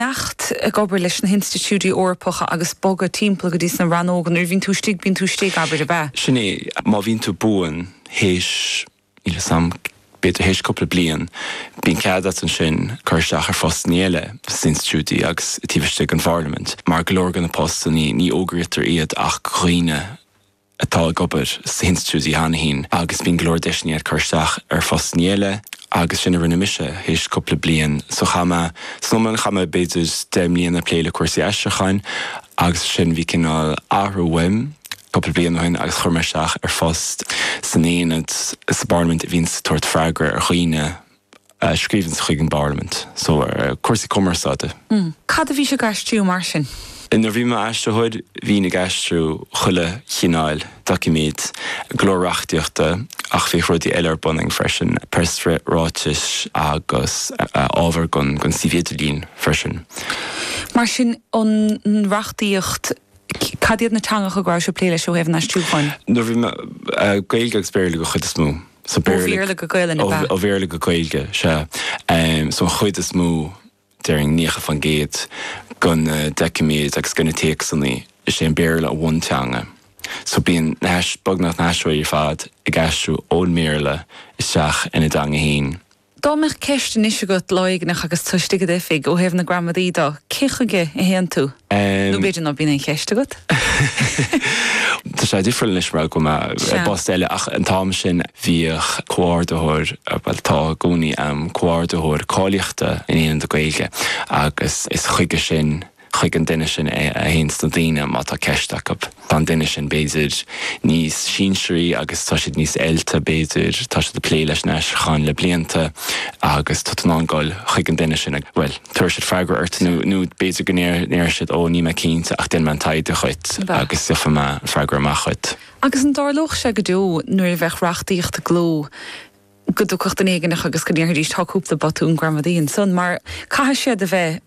teacht ag obair leis na hinstitiúidí Eorpacha agus bogadh timpeall go dtí sna rannóga, nuair a bhíonn tú istigh, bíonn tú istigh, abair, ab ea? Sin é, má bhíonn tú buan théis, níl 'fhios a'm, b'fhéidir théis cúpla bliain, bíonn cead agat ansin cur isteach ar phostanna eile sna hinstitiúidí agus taobh istigh den Pharlaimint. Mar go leor de na postanna, ní fhógraítear iad ach do dhaoine, atá ag obair sna hinstitiúidí cheana féin agus bíonn go leor deiseanna agat cur isteach ar phostannaí eile agus sin a rinne mise théis cúpla bliain so chaith mé, san iomlán chaith mé b'fhéidir deich mbliana ag plé le cúrsaí aistriúcháin agus ansin bhí cineál athrú uaim cúpla bliain ó shin agus chuir mé isteach ar phost san Aonad sa bParlaimint a bhíonn ag tabhairt freagra ar dhaoine a scríobhanns chuig an bParlaimint. So, cúrsaí cumarsáide. Cad a bhís ag aistriú mar sin? Nuair a bhí mé i m'aistritheoir, bhínn ag aistriú chuile chineál doiciméad, go leor reachtaíochta ach bhíodh rudaí eile ar bun agam freisin, preasráitis agus ábhar don suíomh idirlín freisin. Mar sin, an reachtaíocht Cad iad na teangacha go rabhais ag plé leis, ó thaobh an aistriúcháin? Nuair a bhí mé. Gaeilge agus Béarla den chuid is mó. So ó Bhéarla go Gaelainn, ab ea? Ó Bhéarla go Gaeilge, sea. So an chuid is mó, déarfainn 90%, de na doiciméid agus de na téacsanna, is é an Béarla an bhunteanga. So bíonn beagnach na haistritheoirí ar fad ag aistriú ón mBéarla isteach ina dteanga féin. Dá mbeadh ceist anois agat, lá éigneach, agus tú istigh i d'oifig, ó thaobh na gramadaí de, cé chuige a théann tú? Nó b'fhéidir ná bíonn aon cheist agat. Tá sé difriúil anois mar go mb'ann mé i bpost eile ach an t-am sin bhíodh comhordaitheoir, bhuel tá i gcónaí, comhordaitheoir cáilíochta in Aonad na Gaeilge agus is chuige sin, chuig an duine sin a théanns na daoine má tá ceist acu. Tá an duine sin, b'fhéidir, níos sinsearaí agus tá siad níos oilte, b'fhéidir, tá siad ag plé leis an aistriúchán le blianta agus tá tú in ann dul chuig an duine sin agus, bhuel, tabharfaidh siad freagra ort nó b'fhéidir go ndéarfaidh siad 'Ó, níl mé cinnte ach déanfaidh mé an taighde dhuit agus gheofaidh mé freagra amach dhuit. Agus an dtarlódh sé go deo nuair a bheadh reachtaíocht i gcló go dtiocfadh duine éigneach agus go ndéarfaidís 'Tá cúpla botún gramadaí ansan mar caithfidh siad a bheith'?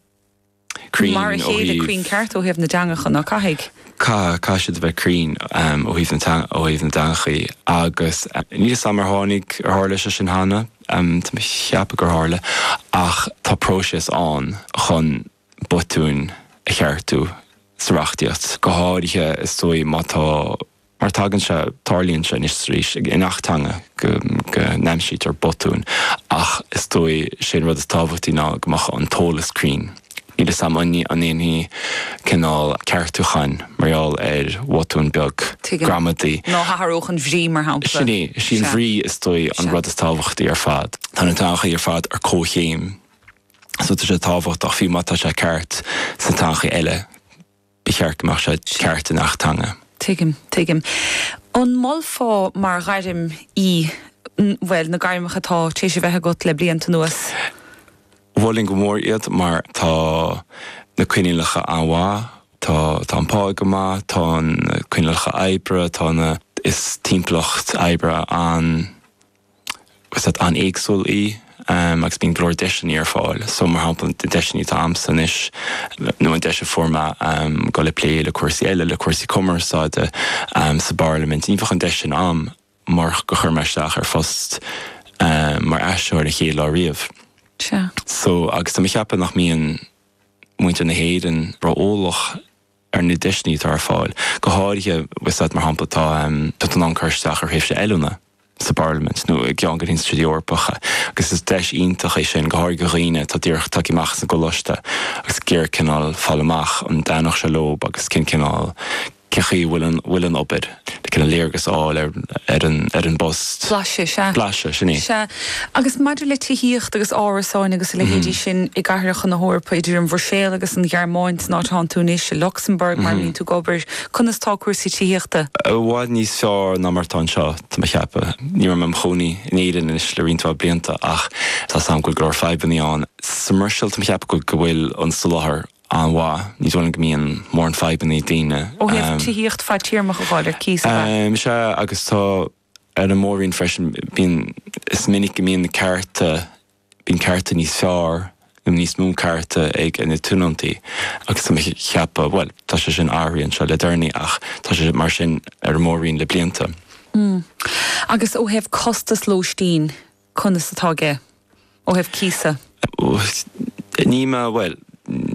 Mar a chéile cruinn ceart ó thaobh na dteangacha, ná caithfidh? Caithfidh siad a bheith cruinn ó thaobh na dteangachaí agus níl 'fhios a'm ar tháinig, ar tharla sé sin cheana, tá mé a' cheapadh gur tharla ach tá próiseas ann chun botúin a cheartú sa reachtaíocht, go háirithe is dóigh má tá, mar tagann sé, tarlaíonn sé anois is arís i ngach teanga go n-aimsítear botúin ach is dóigh 'sé an rud is tábhachtaí ná go mbeadh an t-eolas cruinn. Níl 'fhios a'm an ndéanfaidh cineál ceartúchán mar gheall ar bhotún beag gramadaí. Nó athrú sa mbrí mar shampla. Sin é, sí an bhrí is dóigh an rud is tábhachtaí ar fad. Tá na teangacha ar fad ar comhchéim so tá sé tábhachtach fiú má tá sé ceart sna teangacha eile. ba cheart go mbeadh sé ceart i ngach teanga. Tuigim, tuigim. An molfá mar ghairm í, bhuel, na gairmeacha atá tar éis a bheith agat le blianta anuas? Mholfainn go mór iad mar tá na coinníollacha an-mhaith, tá an pá go maith, tá na coinníollacha oibre, tá na, is timpeallacht oibre an, Is áit an-éagsúil í agus bíonn go leor deiseanna ar fáil. So, mar shampla, na deiseanna atá agamsa anois, nó an deis a fuair mé dul ag plé le cúrsaí eile, le cúrsaí cumarsáide sa bParlaimint, ní bheadh an deis sin agam murach gur chuir mé isteach ar phost mar aistritheoir an chéad lá riamh. Sea. So, agus tá mé ag ceapadh nach mbíonn muintir na hÉireann ró-eolach. ar na deiseanna atá ar fáil. Go háirithe, you know, fiú, mar shampla, tá tú in ann cur isteach ar thréimhse oiliúna sa bParlaimint nó i gceann de na hinstitiúidí Eorpacha agus is deis iontach é sin, go háirithe do dhaoine atá díreach tagthaí amach as an gcoláiste agus ag iarraidh cineál fáil amach an dtaitneodh sé leo agus cén cineál, cén chaoi a bhfuil an obair. léargas a fháil ar an bpost. Blaiseadh, sea. Blaiseadh, sin é. Sea. Agus maidir le tithíocht agus árasáin agus a leithéidí sin i gcathracha na hEorpa, idir an Bhruiséil agus an Ghearmáin, san áit a bhfanann tú anois, i Lucsamburg, mar a mbíonn tú ag obair, conas tá cúrsaí tithíochta? I bhfad níos fearr ná mar atá anseo, tá mé a cheapadh. Ní raibh mé i mo chónaí in Éirinn anois le roinnt mhaith blianta ach tá 's agam go bhfuil go leor fadhbanna ann. Sa mBruiséil, tá mé a cheapadh go bhfuil an soláthar an-mhaith. Ní dóigh liom go mbíonn mórán fadhbanna ag daoine. ó thaobh tithíocht fadtéarmach a fháil ar cíos, ab ea? Sea, agus tá ar an Mór-roinn freisin. Bíonn, is minic go mbíonn na cearta, bíonn cearta níos fearr nó níos mó cearta ag na tionóntaí agus tá mé ag ceapadh, bhuel, tá sé sin athraithe anseo le deireanaí ach tá sé mar sin ar an Mór-roinn le blianta. Mm. Agus ó thaobh costas lóistín, conas atá? Ó thaobh cíosa? Ní mé, bhuel, ní.